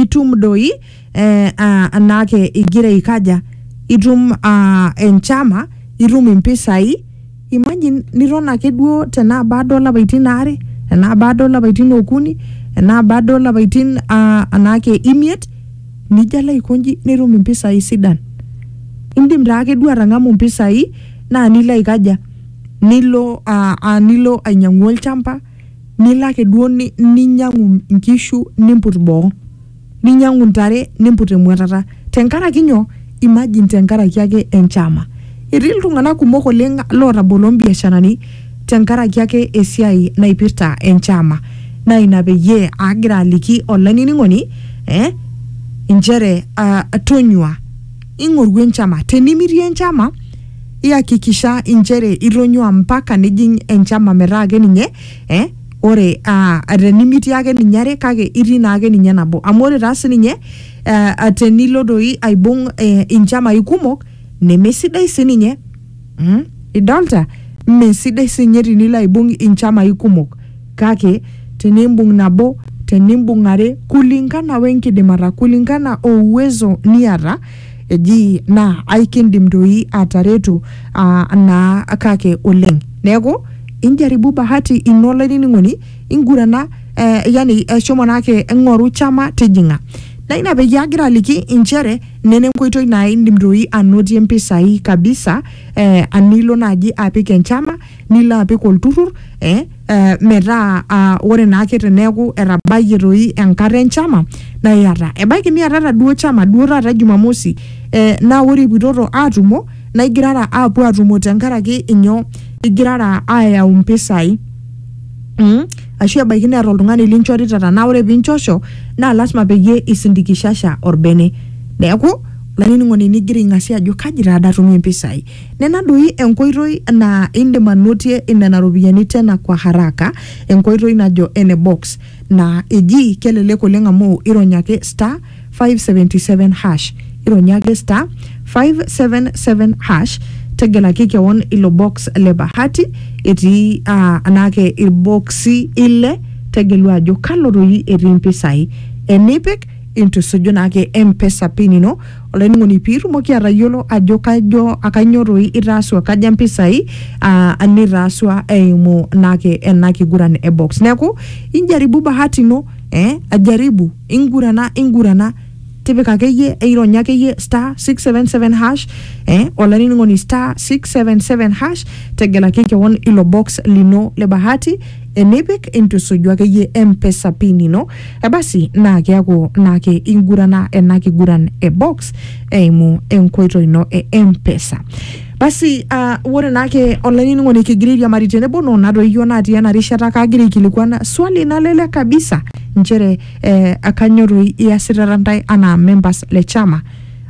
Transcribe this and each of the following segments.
itum doi eh, ah, anaake igira aikaja itum ah, enchama itum impisai imagine niton ake duo tenaa baada olapaitin aare enaa baada olapaitin okuni enaa baada olapaitin ah, anaake imiet nijo alo aikonji nitum impisai sidan indim taake duo atang'amu impisai naa nilo aikaja nilo uh, uh, nilo ainyiang'u olchamba nilo ake duo ni, ninyiang'u nkishu nimput boo ninyiang'u ntare nimput emuatata tenkaraki nyoo imagine tenkaraki ake enchama etii iltung'anak kumok oleng lootabolo mbiasharani tenkaraki ake esiai naipirta enchama naa ina peyie agira aliki olainining'oni eh, inchere uh, tonyua ing'oru enchama tenimirie enchama iyakikisha inchere itonyua mpaka nijing enchama metaa ake ninye eh, ore ah, tenimitii ake ninye are kake itii naa ake ninye nabo amu ore taa sininye eh, tenilo doi aibung eh, inchamai kumok nemesidai sininye Mm? Idolta? Mme sidai sinye tinilo aibung inchamai kumok, kake tenimbung nabo, tenimbung are, kulingana wenkidimata, kulingana o uwezo niata, eji naa aikindim doi ataretu aa naa kake oleng. Neeku injaribu bahati ino olainining'oni, ingurana eh, yani eh, shomo naake ng'oru chama tijing'a. Naa ina peyie agira aliki inchere nena enkoitoi naa indim doi anotie mpisai kabisa eh, anilo naaji apik enchama nilo apik olturrur eh, eh, metaa ah, ore naake teneeku etabayie toi enkata enchama naa iyata ebaiki niatata duo chama duo taata jumamosi eh, naa ore ipuitoto atumo naa igirara apuo atumo tenkaraki inyoo igirara ayau mpisai Mm. ashu ebaiki neeta oltung'ani linchorita tanaa ore pinchosho naa lasima peyie isindikishasha orbene neeku olainining'oni nigira aing'asie ajo kaji taada atumie impisai nena doi enkoitoi naa indim anotie nena ropiyiani tena kwa haraka enkoitoi najo ene box naa eji kelelek oleng amu irony ake star 577 hash ironya ake star 577 hash tegelaki kewon ilo box le bahati etii ah, anaake ilboksi ile tegelu ajo kalo doi etii mpisai enipik intusuju naake empesa pin ino olainining'oni piitumoki atayiolo ajo kajo akainyo doi itaasua kaja mpisai ah, nitaasua eimu naake ena kiguran e box neeku injaribu bahati ino eh, ajaribu ingurana ingurana tipika akeyie eironya akeyie star 677 hash eh, olainining'oni star 677 hash tegelaki kewon ilo box lino le bahati enipik intusuju akeyie mpesa pin ino e basi naa keaku naake ingurana ena kiguran e box eimu enkoitoi ino e mpesa basi uh, ore naake olainining'oni kigira airiamari tenebo noo natoyio natii ena rishata kaagira aikilikuan swali nalelek kabisa nchere eh, akanyorru iasitata ntae anaa members le chama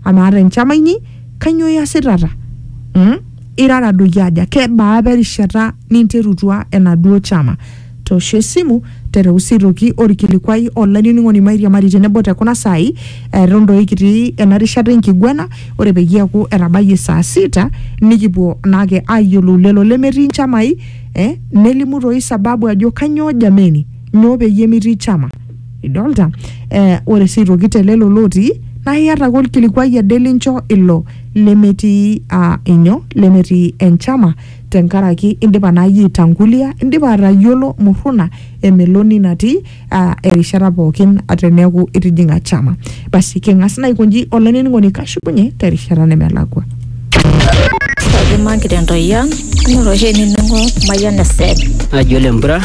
amaa te nchama inyi kanyoo iasitata mm? irara doi aja kebaa apa erishata ninterutua enaduo chama toosho esimu tereu sii toki orkilikuai olainining'oni mairiamari tenebo te kuna saai eton doi kitii ena rishata enkiguana ore peyie eaku etabayie saa sita nikipuo naake ayiolou lelo lemetii nchamai eh, nelimu toi sababu ajo kanyoo jameni nyoo peyie mitii chama idolta eh, ore sii aitoki te lelo lootii naa iata ake olkilikuai ade lincho ilo lemetii ah, inyo lemetii enchama tenkaraki indipa naa iyie aitangulia indipa atayiolo murruna emeloni natii ah, erishata pookin teneeku itijing'a chama basi king'as naa aikonji olainining'oni kashukunye terishata nemelakua Kaji magira entoyian inoto oshi enining'o Mayian FM. Naji ole mpura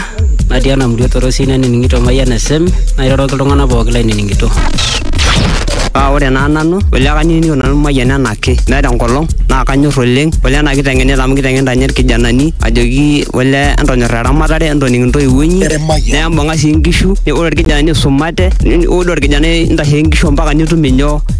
natii ena murua torosi nanining'ito Mayian FM nairoroki iltung'anak pooki lainining'ito. Paa ore naa nanu ole kanining'ito nanu Mayian enaake meeta enkolong naa kanyor oleng ole ena kiteng'enita amu kiteng'enita ninye irkijanani ajoki ole entonyorra eramatare entoning intoiwuo inyi nembung'a sii inkishu ore irkijanani isumate ore orkijanai intasheki inkishu ampaka nitum inyoo